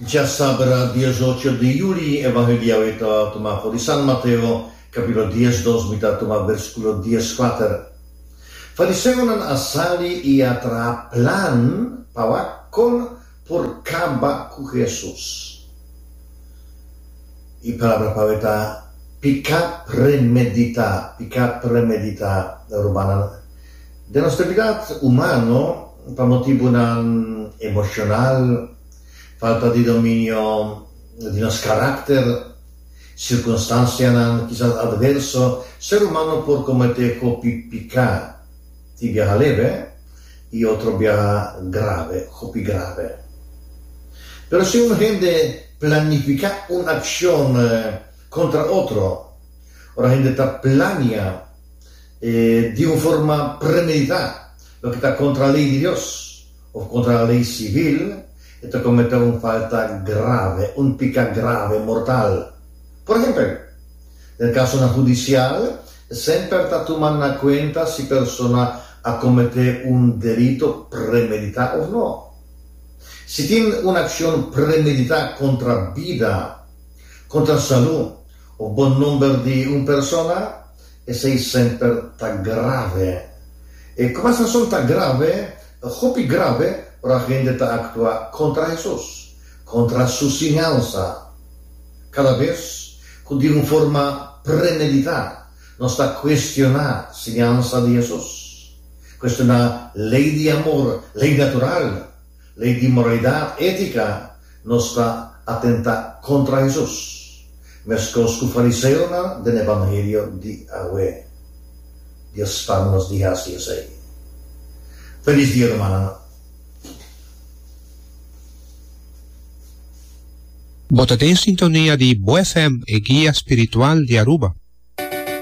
Dja sabra diesocho di yuli e Evangeliao e ta tuma for di San Mateo, kapitulo dies dos, mi ta tuma versikulo dies kuater. Fariseonan a sali i a traha plan pa wak kon por kaba ku Jesus. E palabra pau e ta piká premeditá, piká premeditá, rumannan. Den nos debilidat humano, pa motibunan emoshonal, falta di dominio di nos karakter, sirkunstansianan kisas adverso, ser humano por kometé hopi piká i biaha leve i otro biaha grave, hopi grave. Pero si un hende planifiká un akshon kontra otro, ora hende ta plania E di un forma premeditá, loke ta kontra lei di Dios òf kontra lei sivil, e ta kometé un falta grave, un piká grave, mortal. Por ehèmpel, den kasonan hudisial, e semper ta tuma na kuenta si persona a kometé un delito premeditá òf nò. Si tin un akshon premeditá kontra bida, kontra salú òf bon nòmber di un persona, Esei semper ta grave. E kuma sasón ta grave? Ta hopi grave ora hende ta aktua kontra Hesus, kontra Su siñansa. Kada bes ku di un forma premeditá nos ta kuestioná siñansa di Hesus, kuestioná lei di amor, lei natural, Lei di moralidat étika nos ta atentá kontra Hesus, meskos ku fariseonan den e bangelio di awe. Dia span nos di hasi esei. Felis dia rumannan. Bo ta den sintonia di Bo FM, e guia spiritual di Aruba.